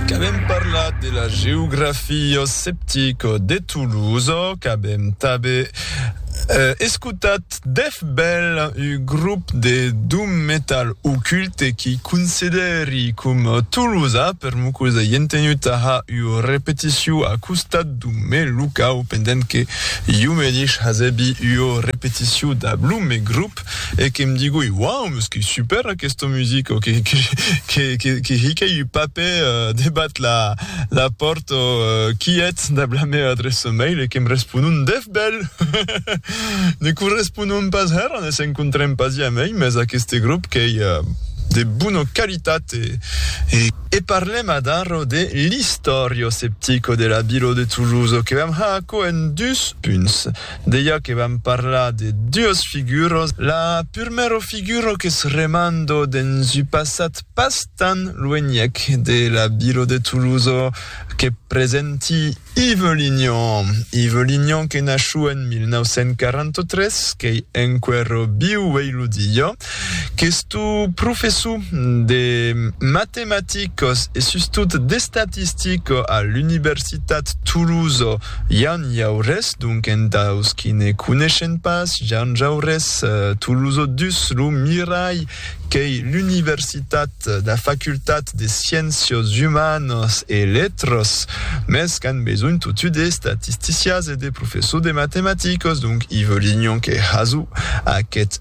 Qu'avèm parlat de la geografia septica de Toulouse, qu'avèm tanben escotat deth bèl grop de doom metal Occulte qui considèri com Toulouse per Mucosa i entenuta ha ua repeticiu a costat dau mè locau pendent que iu medish hasebi ua repeticiu dab lo mè grop. e que em digui, Uau, mas qu'ei super aquesta musica, o que hicai un papè debat la pòrta o quiet dab la mèa adreça mail e qu'em responon, Dèf bèl! Ne corresponon pas hèra, ne s'encontrem pas jamai, mès aqueste grop qu'ei de bona qualitat e. E parlem adara de l'Historio Septico de la Vila de Toulouse, o que vam har aquò en dus punts. Deia que vam parlar de duas figuras. La purmèra figura qu'es remanda dens un passat pas tan luenhèc de la vila de Tolosa que presenti Ive Lignan. Ive Lignan que naciu en 1943, qu'ei enqüèra viu uei lo dia. Questo professor de matematicas e sustot d'estatistica a l'Universitat Toulouse, Yann Jaurès, donc entaus qui ne coneishen pas Yann Jaurès, Toulouse dus lo miralh qu'ei l'universitat d'a facultat de sciéncias humanas e letras, mès qu'an besonh totu de statisticias e de professors de matematicas, donc i volián que Hazou, aquest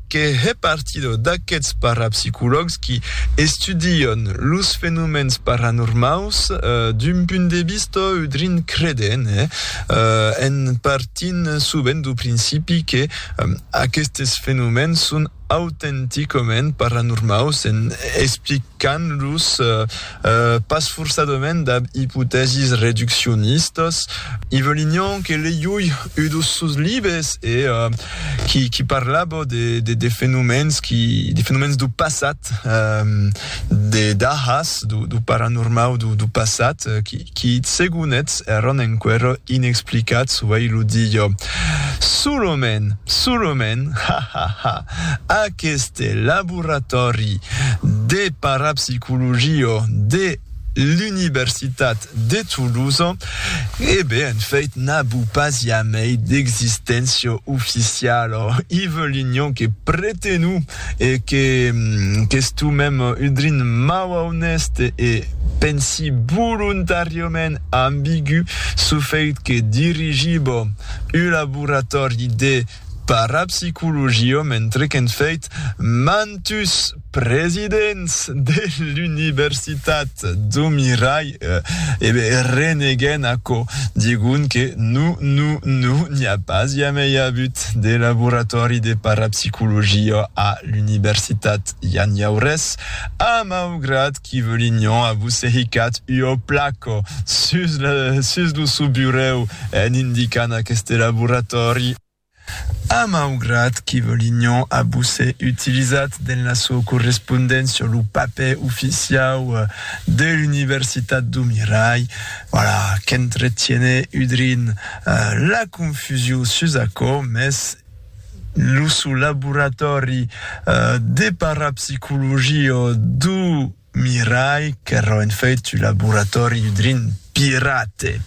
que hè partida d'aqueths parapsicològs qui estudian los fenomèns paranormaus d'un punt de vista udrin credent, en partint sovent du principi que aquestes fenomèns son autenticament paranormaus en explicant-los Pas forçadament dab ipotèsis reduccionistas. Yvelinion que leiui ua dos sos libes e qui parlava de fenomèns dau passat, de dahas dau paranormau dau passat qui segon eth èran enquera inexplicats uei lo dia. Solament, solament, ha! ha! ha! Aqueste laboratòri de parapsicologia de l'Unibersitat de Toulouse, e ben, en fait, n'a bu pas jamei d'existéncia oficiala. I veulignon que pretenu e que qu'estumem udrin mau aunèste e pensi volontàriament ambigu, çò fait que dirigiba un laboratòri de Parapsicologia mentre qu'en fèit mantus presidents de l'universitat do mirai e be reneguèn aquò, digun que no, no, no, n'i a pas jamei avut de laboratòri de parapsicologia a l'universitat, ja n'i au res, a maugrat Qui veu l'ignon a vos sehicat ua placa sus la sus lo sou burèu en indicant aqueste laboratòri. A maugrat qui veu l'ignon a vos se utilizat dens la sua correspondéncia lo papèr oficiau de l'Universitat do Mirai, voilà, qu'entretiene udrin la confusiu sus aquò, mès Lo suu laboratòri de parapsicologia du Mirai, qu'èra en fait un laboratòri udrin pirate.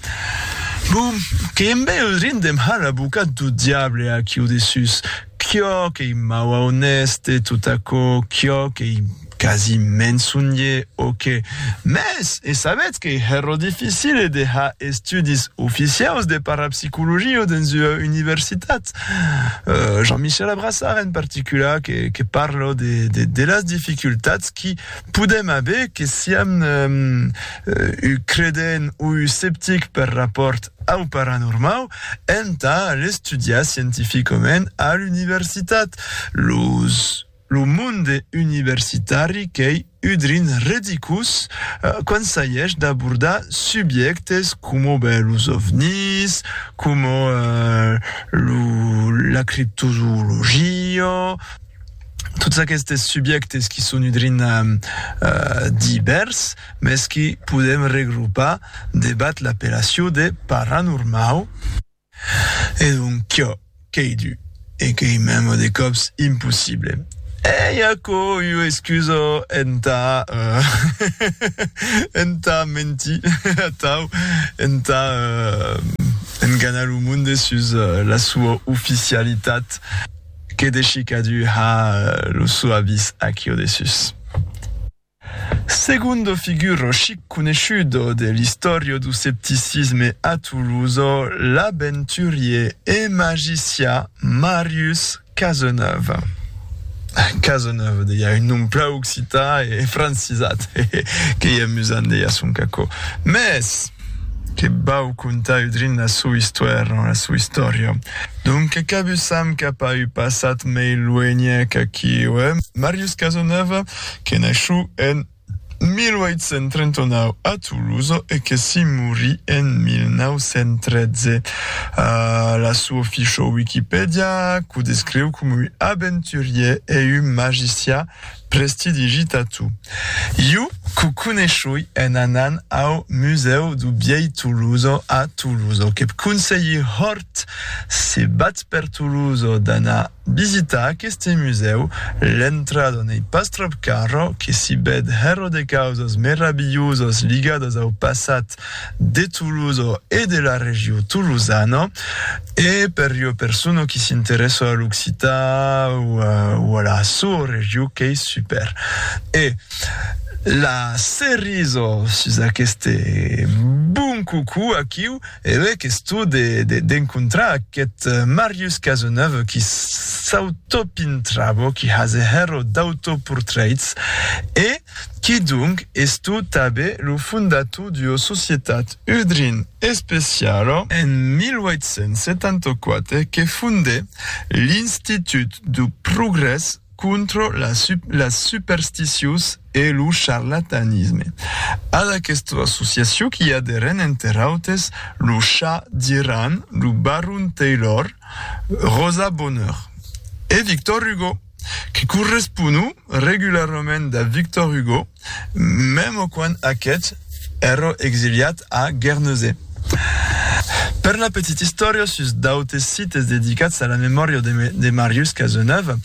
Bon, que embe udrin de mal abocat du diable aquiu dessús, quiò qu'ei mau aunèste, tot aquò, quiò qu'ei. Quasi me'n sonhè, o qué? Mès e sabètz qu'ei hèro dificile de har estudis oficiaus de parapsicologia dens ua universitat. Jean-Michel Abrassard en particular que que parla de de las dificultats qui podèm aver que siam un credent o un sceptic per rapòrt au paranormau entà l'estudiar scientificament a l'universitat. Los Lo monde universitari qu'ei udrin redicus quand s'aiesh d'abordar subjèctes coma ben los ovnis, coma lo la criptozoologia, tots aquestes subjèctes qui son udrin divèrs, mès que podem regrupar debat l'appellation de paranormau. Es un quio qu'ei du e qu'ei mèma de còps impossible. Ei aquò ua excusa entà entà mentir atau entà enganar lo monde sus la sua oficialitat? Que deshi cadun a lo sò avís aquio de sus. Segond figur chic coneishut de l'istòria du septicisme a Toulouse, l'aventurier e magicià Marius Cazeneuve. Cazeneuve, deia un nom plan occità e francisat, qu'ei amusant, deia son cacò. Mès, que vau contar udrin la sua istoèra, la sua istòria. Donque qu'abussam cap a un passat mei luenhèc aquiu, eh? Marius Cazeneuve. que naishut en 1839 a Toulouse e que s'i morí en 1913. A la suu officiau Wikipedia, qu'o descriu com ui aventurier e un magicià prestidigi tatu. Iu qu'o coneishui en anant au Museu du Biei Toulouse a Toulouse. Que'p conselhi hort, se batz per Toulouse, d'anar Visitar aqueste musèu, l'entrada n'ei pas tròp cara, que s'i bèd hèra de causas meravilhosas ligadas au passat de Tolosa e de la regió tolosana, e per ua persona qui s'interèssa a l'occitan o a la soa regió qu'ei super. E la cerisa sus aqueste bon cocò aquiu. E lei questo de d'encontrar aquest Marius Cazeneuve qui s'autopintravo, qui hase hero d'autoportraits e qui donc esto tabe lo fondator d'ua societat Udrin Especialo, en 1874 que fonde l'Institut du Progrès contra las supersticios e lo charlatanisme. Ad aquesta associacion qu'i aderan enter autes lo Cha d'Iran, lo Baron Taylor, Rosa Bonheur e Victor Hugo, que corresponu regularament a Victor Hugo, Mèmo quan aqueth èrò exiliat a Guernesey. Per la petita istòria sus d'autes sites dedicats a la memòria de Marius Cazeneuve,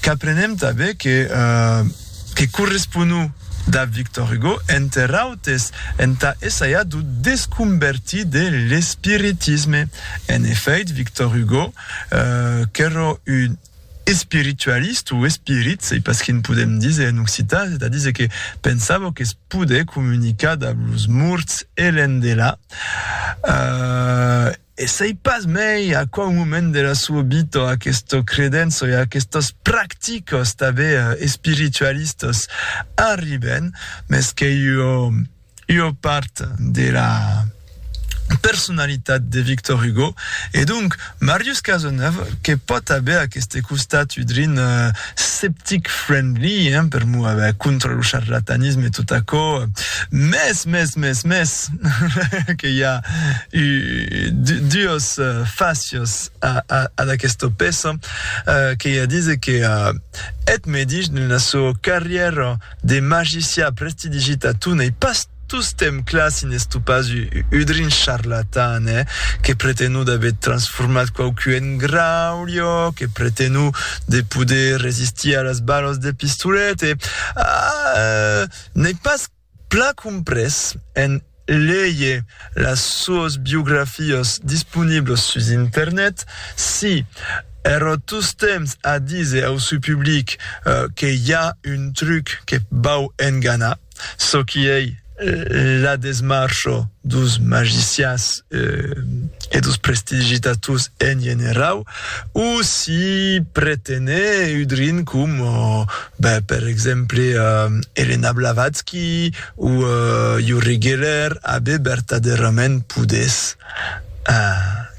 qu'aprenem tanben que corresponut dab Victor Hugo, enter autes, entà essajar d'o desconvertir de l'espiritisme. En efèit, Victor Hugo, qu'èrò un Espiritualist o espirit, sei pas quin podem díser en occitan, es a díser que pensava que es poder comunicar dab los morts e l'endelà, e sei pas mei a quau moment de la soa vita aquesta credença e aquestas practicas tanben espiritualistas arriben, mes qu'ei ua. ua part de la personalitat de Victor Hugo, e donc Marius Cazeneuve que pòt aver aqueste costat udrin sceptic friendly, hein, per mover contra lo charlatanisme e tot aquò, mès, mès, mès, mès, que i a duos facios ad aquesta peça, que i a díser que eth medish dena sua carrièra, De magicià prestidigit a tu n'ei pas tostemp clar si n'es tu pas udrin charlatan, eh? Que pretenu d'aver transformat quauqu en graulho, que pretenu de poder resistir a las balos de pistolet e, ah, n'ei pas plan comprés en Lei las suas biografias disponiblas sus internet. Si, èra tostemps a díser au seu public que i a un truc que vau enganar, çò qui ei la desmarcha dos magicians e dos prestigitators en generau, o si pretenèt udrin com, ben, per exemple, Elena Blavatsky, O ieu reguèlèr abe vertadèrament podés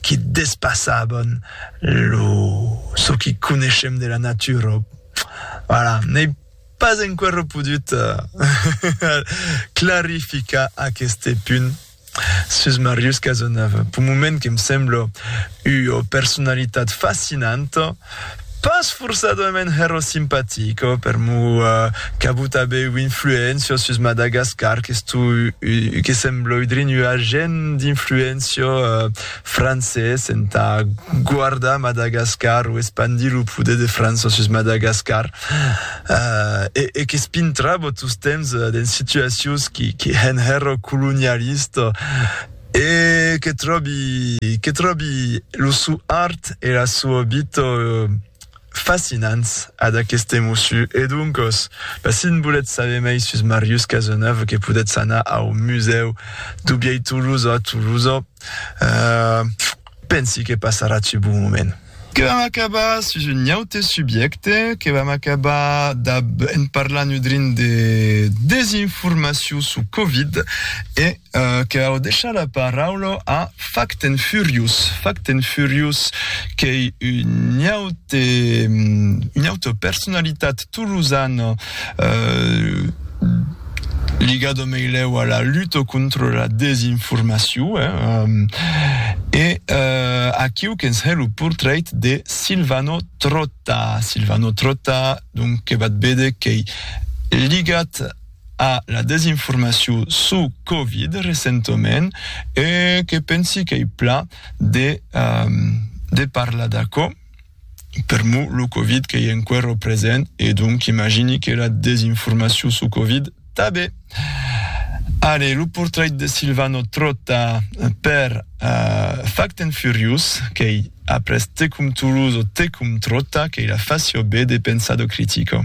qui despassaban lo çò qui coneishem de la natura. Voilà, n'ei pas enquèra podut clarificar aqueste punt. Sus Marius Cazeneuve, p'un moment que me sembla ua personalitat fascinanta, pas forçadament hèro simpatica, per mo qu'avut aver ua influéncia sus Madagascar, que sembla udrinhua gent d'influéncia. francés entà guardar Madagascar o espandir lo poder de França sus Madagascar e qu'espintrava tostemps dens situacions que hèn hèra colonialista e que tròbi que tròbi lo sou art e la soa vita fascinants ad aqueste mossu e doncas ben si n volètz saber mei sus Marius Cazeneuve que podètz anar au musèu du vièlh Tolosa a Tolosa Eh, pensi que passarà ce bon moment. Que vam acabar sus un aute subjècte, que vam acabar dab en parlar nudrin de desinformacion sus Covid e que vau deishar la paraula a Fact and Furious. Fact and Furious qu'ei un aute, una auta personalitat tolosana, eh, ligat au meilèu a la luta contra la desinformacion, e aquiu que'ns hè lo portrait de Silvano Trotta, Silvano Trotta, donc que vat véder qu'ei ligat a la desinformacion suu Covid recentament, e que pensi qu'ei plan de parlar d'aquò. Per mo lo covid qu'ei enquero present e donc imagini que la desinformacion suu covid tabe. Allez, lo portrait de Silvano Trotta per Fact and Furious qu'ei après Tecum Toulouse o Tecum Trotta qu'ei la facio be de pensar do critico.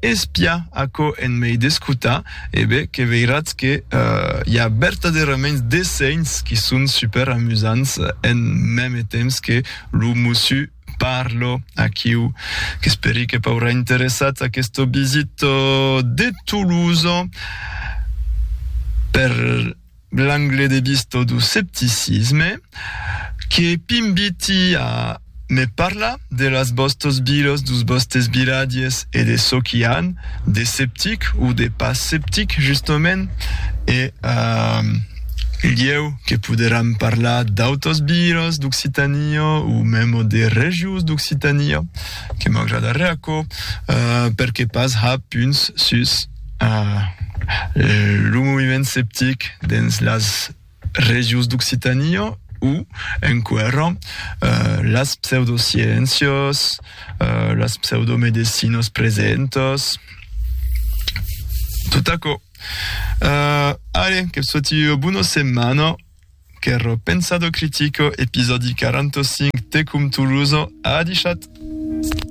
Espiá aquò en mei d'escotar, e be, que veiratz que i a vertadèraments dessenhs qui son super amusants en mème temps que lo mussu parlo. Aquiu, qu'esperi que p'aurà interessat aqueste visit de Toulouse per L'angle de vista du scepticisme que p'inviti a me parlar de las vòstas vilas, dus vòstes vilatges e de çò qu'i a de sceptic o de pas sceptic justament e lhèu que poderam parlar d'autas vilas d'Occitania o memo de regions d'Occitania que m'agradarè aquò perque pas ja punts sus. Lo moviment septic dens las regions d'Occitània o enquèra las pseudosciéncias, las pseudomedecinas presentas, tot aquò. Allez, que vos sòti ua bona setmana, qu'èra Pensado Critico, episòdi 45, Tecum Tolosa. Adishat!